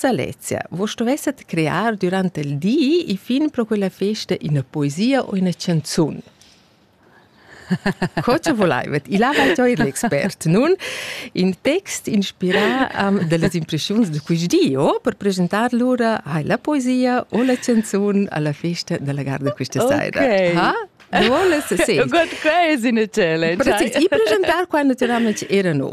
Salezia, vos stuvesset crear durant il di i fin pro quella festa ina poesia o ina canzun. Co ce volaivet? Il ha gioi l'expert nun in text inspirà um, delle impressioni di quist di oh, per presentar lura hai la poesia o la canzun alla festa della garda questa okay. sera. Ha? Du volest sentire? Good quiz in a challenge. Precis, i presentar qua naturalmente era no.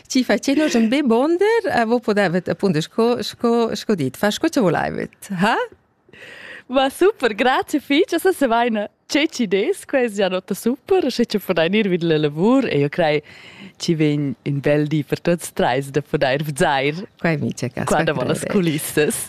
ci facenos un bebonder a vo podavet appunto sco sco sco dit fa sco ce volaivet ha Va super, grazie fich, esa se vaina ce ci des, quest ja nota super, sche ci podain ir vid la lavur e io crei ci vegn in bel di per tuots treis da podair vzair Quai mi c'è cas. qua davant las culissas.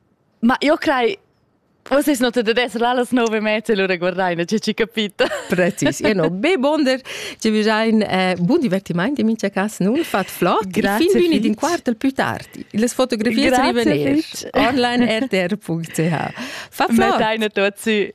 Ma io crei Forse non te des là los nove mezzi lura guardain, ci ci capita. Precis. Io no, be bonder, ci visain eh, bun divertimaint in mincha cas nun fat flot. Grazie fin vini din quartel più tardi. Les fotografies rivener online rtr.ch. Fa flot. Metteina tot su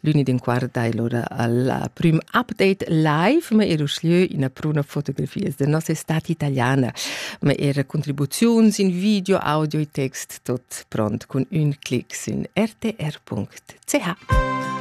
L'uni din quart dai lura alla prim update live, ma era uslieu ina pruna fotografias de nossa estate italiana, ma era contribuziuns in video, audio e text tot pront cun ün clic sin rtr.ch.